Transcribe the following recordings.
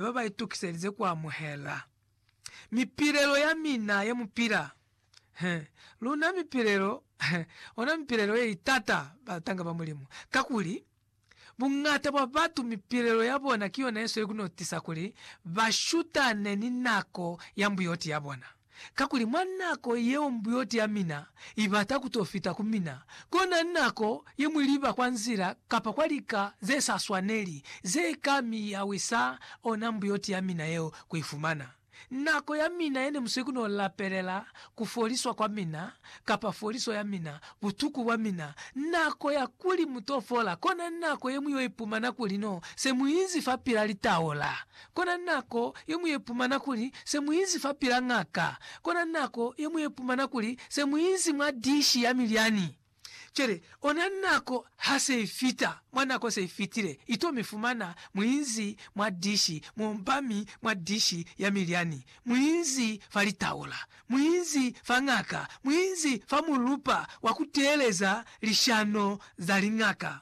ne ba ba itukiselize ku amuhela mipilelo ya mina ye mu pila. He, luna mipilelo, he, ona mipilelo ye itata, batanga ba Mulimu, kakuli, buñata bwa batu mipilelo ya bona ki yona ye sweli ku no tisa kuli ba shutane ni nako ya mbuyoti ya bona. Kakuli mwa nako yeo mbuyoti ya mina ibata kuto fita ku mina, kona nako yeñwi liba kwa nzila kapa kwa lika ze sa swaneli ze ka mi yawisa ona mbuyoti ya mina yeo ku ifumana. Nako ya mina yene musweki no lapelela ku foliswa kwa mina kapa foliso ya mina, butuku bwa mina, nako ya kuli muto fola, kona nako yeñwi yo ipumana kuli no se muinzi fapila litaola Kona nako ye mu ye pumana kuli se mu inzi fa pila ngaka. Kona nako ye mu ye pumana kuli se mu inzi mwa dishi ya milyani. Cwale, ona nako ha se i fita, mwa nako se i fitile, i to mi fumana mu inzi mwa dishi, mu omba mi mwa dishi ya milyani, mu inzi fa litaula, mu inzi fa ngaka, mu inzi fa mulupa wa ku teeleza lishano za lingaka.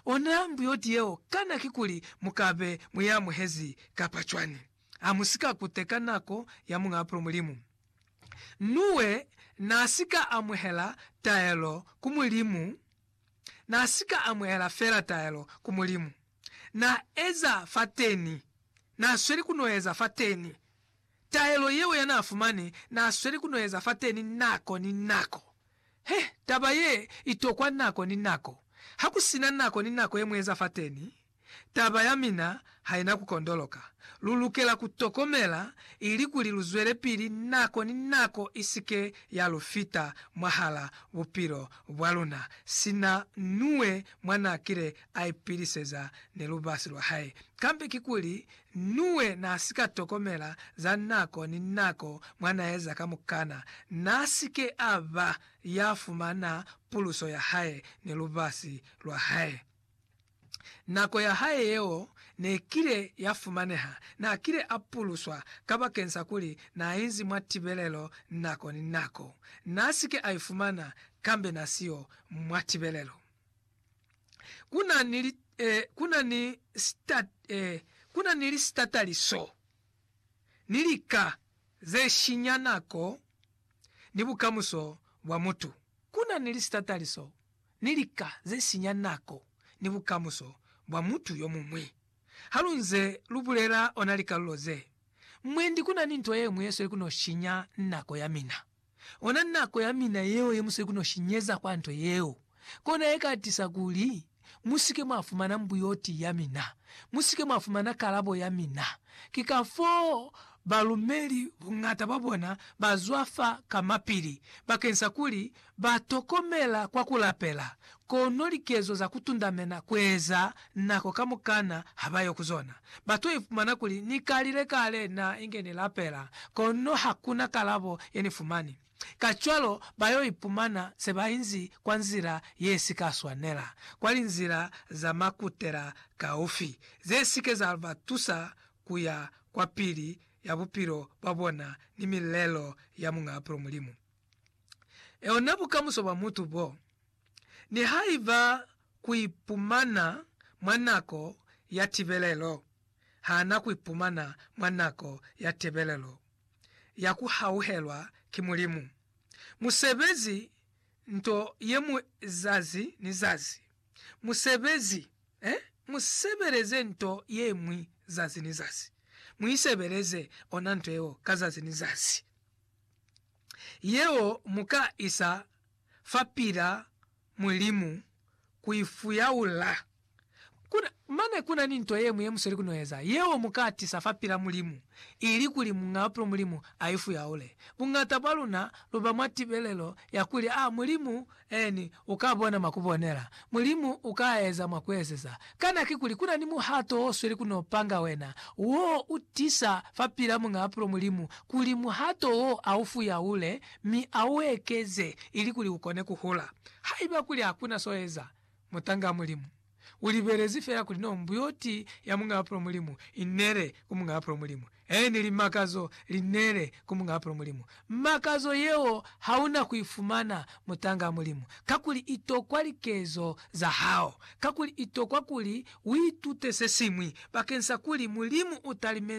Ona mbuyoti yeo kana kikuli mu ka be mu i amuhezi kapa cwani. Ha mu si ka kuteka nako ya Muñ'a Bupilo Mulimu. Nuwe n'a si ka amuhela taelo ku Mulimu, n'a si ka amuhela fela taelo ku Mulimu. N'a eza fateni, n'a sweli ku n'o eza fateni. Taelo yeo ya n'a fumani n'a sweli ku n'o eza fateni nako ni nako. He, taba ye i tokwa nako ni nako. Ha ku sina nako ni nako ye mu eza fateni, taba ya mina ha i na ku kondoloka. Lu lukela ku tokomela ilikuli lu zwelepili nako ni nako i si ke ya lu fita mwahala bupilo bwa luna, sina Nuwe mwa n'a kile a ipiliseza ni lubasi lwa hae. Kambe kikuli Nuwe naasika tokomela za nako ni nako mwanaeza kamukana naasike aba yafumana puluso yahae ni lubasi lwahae. Nako yahae yeo nekile yafumaneha, naakile apuluswa kabakeng sa kuli naainzi mwa tibelelo nako ni nako. Naasike aifumana kambe nasiyo mwa tibelelo. ku na ni, eh, ku na ni stat, eh, ku na ni lisitatali so, ni lika ze shinya nako ni bukamuso bwa mutu. Ku na ni lisitatali so, ni lika ze sinya nako ni bukamuso bwa mutu yo muñwi. Ha lu nze lu bulela ona likalulo ze, mwendi ku na ni nto ye ñwi ye sweli ku n'o shinya nako ya mina. Ona nako ya mina yeo ye musweki no shinyeza kwa nto yeo, kona ye ka tisa kuli musike mwa fumana mbuyoti ya mina, musike mwa fumana kalabo ya mina. Ki kafoo balumeli buñata bwa bona ba zwafa kamapili, bakeñsa kuli ba tokomela kwa ku lapela, Kono likezo za kutundamena kueza nako kamukana habayo kuzona. Batu ifumana kuli, Nikalile kale na inge nilapela, kono hakuna kalabo yenifumani. Kacwalo bayo ipumana sebainzi kwa nzila yesika swanela, kwa linzila za makutela kaufi, zesike za batusa kuya kwapili ya bupilo bwabona ni milelo ya Muñ'a Apulo Mulimu. Eona bukamuso bwa mutu bo. Nihaiba ku ipumana mwa nako ya tibelelo, hana ku ipumana mwa nako ya tebelelo ya ku hauhelwa ki Mulimu. Musebezi nto ye mu zazi ni zazi. Musebezi, eh? Mu sebeleze nto ye ñwi zazi ni zazi. Mu isebeleze ona nto yeo ka zazi ni zazi. Yeo mu ka isa fa pila Mulimu ku i fuyaula. Kuna, mane kuna ni nto yeñwi ye musweli ku no eza, yeo mu ka tisa fa pila Mulimu, ili kuli Muñ'a Bupilo Mulimu a i fuyaule. Buñata bwa luna lu ba mwa tibelelo ya kuli, A Mulimu eni u ka bona mwa ku bonela? Mulimu u ka eza mwa ku ezeza? Kana ki kuli kuna ni muhato o sweli ku no panga wena, wo u tisa fa pila Muñ'a Bupilo Mulimu kuli muhato wo a u fuyaule mi a u ekeze ilikuli u kone ku hula. Haiba kuli ha ku na s'o eza, mutangaa Mulimu. U libelezi fela kuli no mbuyoti ya Mungaapulo Mulimu i nele ku Mungaapulo Mulimu, eeni li makazo li nele ku Mungaapulo Mulimu. Makazo yeo ha u na ku i fumana, mutangaa Mulimu, kakuli i tokwa likezo za hao, kakuli i tokwa kuli u itute se siñwi bakeñsa kuli Mulimu u talimezi